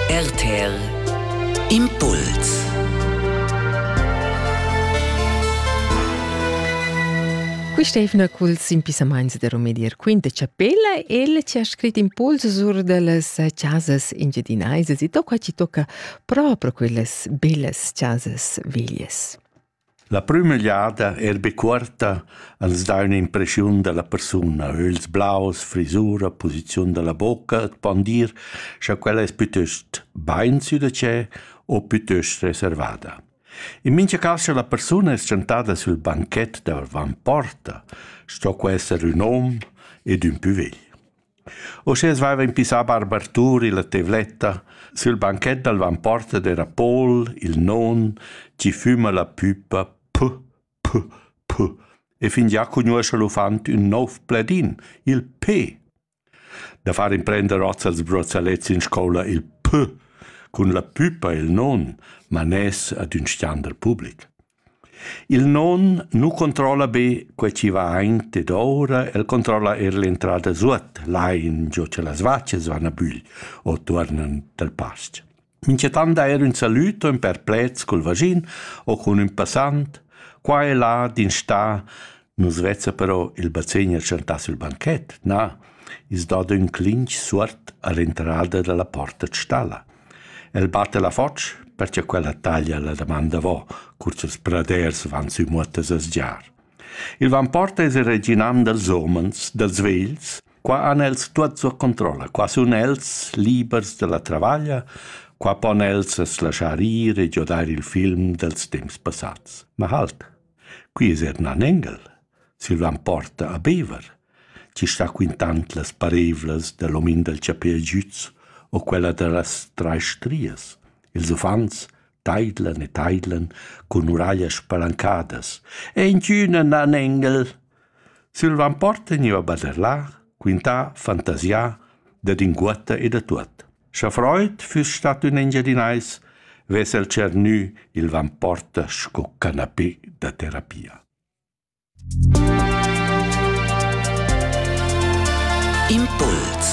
RTL Impuls Quist'eivna culs impissamaints da Rumedier quint e chapella el ci ha scrit impuls sur dallas chasas engiadinaisas e tocca ci tocca proprio quellas bellas chasas veglias. La prüma jada eir be cuorta als dà ün'impreschiun da la persuna, ögls blaus, frisura, posiziun da la bocca e pon dir scha quella es pütöst bain sü da tschè o pütöst reservada. In mincha cas scha la persuna es tschantada sül banchet davant porta, sto que esser ün hom ed ün pü vegl. Uschè as vaiva impissà Barbartur illa tevletta sül banchet dal vanporta d'eira Paul, il non, chi füma la püpa P, P, P e fingià cugnuoscha l'uffant ün nouv pledin, il P. Da far imprender hoz als brozzalets in scoula il P cun la püpa e il non, man es ad ün standard public. Il non nu controlla be quai chi vain dedouра, el controlla eir l'entrada suot, lain giò cha las vachas van a bügl o tuornan dal pas-ch. Minchatant eir ün salüd o ün perplet cul vaschin o cun ün passant. Qua e là d'instà Nus vezza però il bazegner tschentà sül banchet, na, i's dà d'ün clinch suot a l'entrada da la porta d' stalla. El batta la foch perche quella taglia la damanda vo, cur ch'ils praders van sü muottas a sgiar. Il vamporta es il reginam dals homens, dals vegls, qua han els tuot sua controlla, qua sun els libers dalla travaglia, qua pon els as laschar ir e giodair il film dels temps passats. Ma halt, Quei es eir ün anengel. Silvan porta a Bever, chi sta quintand las pareivlas da l'omin dal chapè giüts o quella da las trais strias. Ils uffants taidlan e taidlan cun uraglias spalancadas. E inchün ün anengel! Silvan porta gniva baderlà, quintà, fantasià, dad inguotta e da tuot. Scha freud füss stat ün Engiadinais, vess el tschernü il vamporta sco canapé da terapia. Impuls